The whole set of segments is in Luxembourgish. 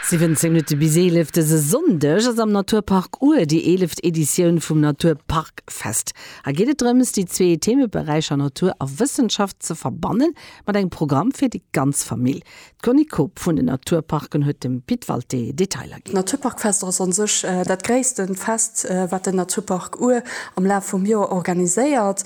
17 Minutte bis 11, dëse Sonndeg ass am Naturpark Our déi eeleft Editioun vum Naturparkfest. Hei geet et drëms, déi zwee Themeberäicher Natur a Wëssenschaft ze verbannen, mat engem Programm fir déi ganz Famill. D'Conny Koob vun den Naturparken huet dem Pit Walté Detailer ginn. D'Naturparkfest ass an sech dat gréisste Fest, wat den Naturpark Our am Laf vum Joer organiséiert.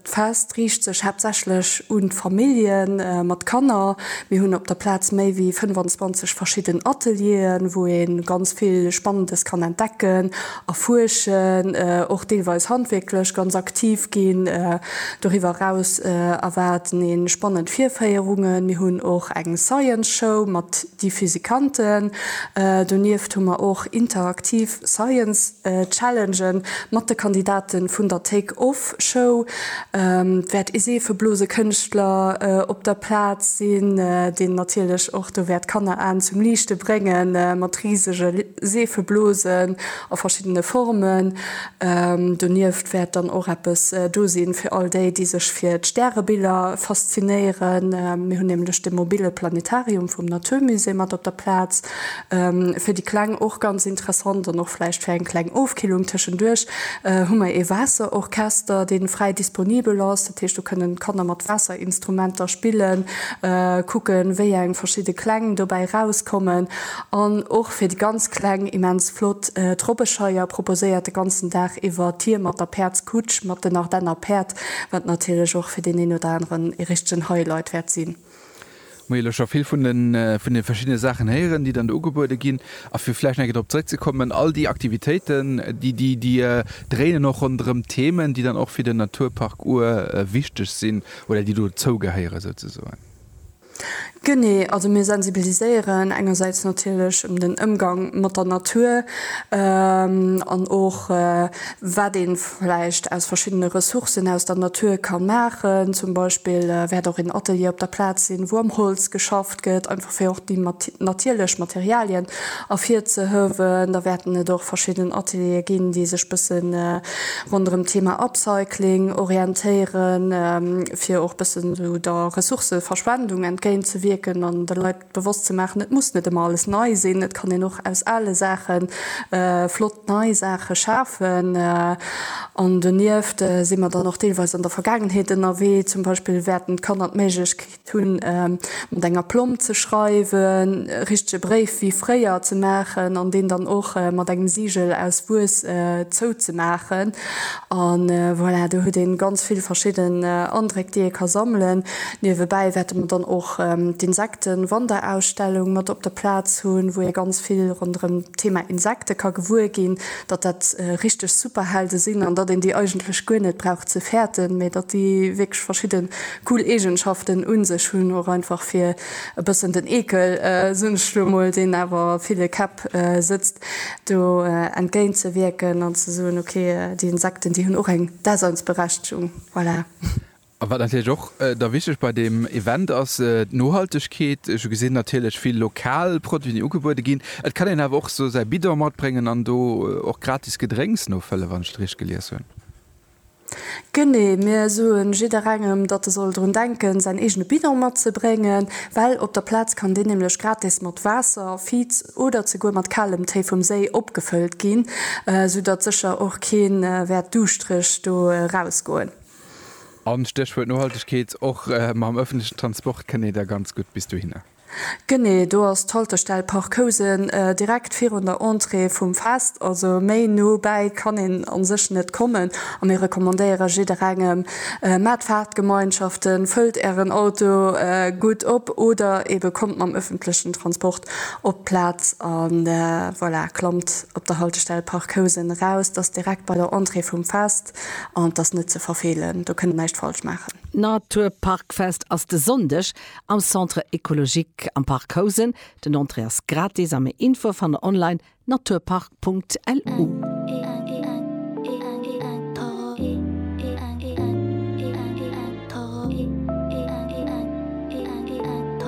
D'Fest riicht sech haaptsächlech un d'Famillje mat Kanner. Mir hunn op der Plaz méi wéi 25 verschidden Atelieren, wou ee ganz vill Spannendes kann entdecken, erfuerschen, och deelweis handwierklech ganz aktiv ginn. Doriwwer eraus erwaarden ee spannend Virféierungen. Mir hunn och eng Science Show mat. déi Physikanten. Donieft hu mer och interaktiv Science Challenge mat de Kandidate vun der Take Off Show. Et wäert ee Seefeblosekënschtler op der Plaz sinn, deen natierlech och do wäert d'Kanneraen zum Liichte bréngen mat risege Seefeblosen a verschiddene Formen. Donieft wäert dann och eppes do sinn fir all déi, déi sech fir d'Stärebiller faszinéieren. Mir hunn nämlech de mobille Planetarium vum Natur Musée mat op der Plaz. Fir déi Kleng och ganz interessant an och vläicht fir eng kleng Ofkillung tëschenduerch hu mer ee Waasserorchester, dee fräi disponibel ass. Dat heescht do kënnen d'Kanner mat Waasserinstrumenter spillen, kucken wéi eng verschidde Kläng dobäi erauskommen. An och fir déi ganz Kleng immens flott. D'Robbescheier proposéiert de ganzen Dag iwwer Tier mat der Päerdskutsch, mat den Ardenner Päerd, wat natierlech och fir deen een oder aneren ee richtegen Highlight wäert sinn. Hu jo lo scho vill vun de verschiddene Saachen héieren, déi dann do ugebuede ginn. A fir vläicht nach eng Kéier drop zeréckzekommen, all déi Aktivitéiten, déi dréinen och ronderëm Themen, déi dann och fir den Naturpark Our wichteg sinn oder déi dozougehéieren souzesoen. Genee, also mir sensibiliséieren engersäits natierlech ëm den Ëmgang mat der Natur an och wat ee vläicht aus verschiddene Ressourcen aus der Natur ka maachen. Zum Beispill wäert och een Atelier op der Plaz sinn, wou am Holz geschafft gëtt, einfach fir och déi natierlech Materialien ervirzehëwen. Da wäerten et och verschidden Ateliere ginn, déi sech bësse ronderëm d'Thema Upcycling orientéieren, fir och bësse sou der Ressourcëverschwendung entgéint ze wierken an de Leit bewosst ze maachen, et muss net ëmmer alles nei sinn, et kann een och aus ale Saache flott nei Saache schafen. An donieft si mer dann och deelweis an der Vergaangenheet ënnerwee. Zum Beispill wäerten d'Kanner d'Méiglechkeet Hunn, mat enger Plomb ze schreiwen, e richtege Bréif wéi fréier ze maachen an deen dann och mat engem Sigel aus Wuess zouzemaachen. An voilà, do huet ee ganz vill verschidden Andréck, déi ee ka sammelen. Niewebäi wäerte mer dann och d'Insektenwanderausstellung mat op der Plaz hunn, wou ee ganz vill ronderëm d'Thema Insekte ka gewuer ginn, datt dat richteg Superhelde sinn an datt een déi eigentlech guer net brauch ze fäerten, mee datt déi wierklech verschidde Cool Eegenschaften un sech. Hunn och einfach fir e bëssen den Eekel, soen ech elo mol, deen awer a ville Käpp sëtzt, do entgéint ze wierken an ze soen, ok, déi Insekten, déi hunn och eng Daseinsberechtegung. Voilà. A wat natierlech och da wichteg bei deem Event ass, d'Nohaltegkeet. Ech hu gesinn, natierlech vill lokal Produiten, déi ugebuede ginn. Et kann een awer och sou säi Bidon matbréngen an do och gratis Gedrénks nofëlle wann ech et richteg gelies hunn. Genee, mir soen jidderengem, datt e soll drun denken, säin eegene Bidon matzebréngen, well op der Plaz kann deen nämlech gratis mat Waasser, Viz oder zeguer mat kalem Téi vum Séi opgefëllt ginn, sou datt sécher och kee wäert duuschtreg do erausgoen. An, Stéchwuert Nohaltegkeet, och mam ëffentlechen Transport kënnt ee da ganz gutt bis dohinner. Genee, do ass d'Haltestell Park Housen, direkt virun der Entrée vum Fest. Also méi no bäi kann een a sech net kommen. A mir recommandéiere jidderengem, Maacht Fahrtgemeinschaften, fëllt ären Auto gutt op oder eebe kommt mam öffentlichen Transport op d'Plaz. A voilà, klammt op der Haltestell Park Housen eraus, dat ass direkt bei der Entrée vum Fest an dat ass net ze verfeelen. Do kënnt der näischt falsch maachen. D'Natur Park Fest ass de Sonndeg. Am Centre Ecologique am Park Housen, den Entrée ass gratis a méi Infoe fannt der online, naturpark.lu.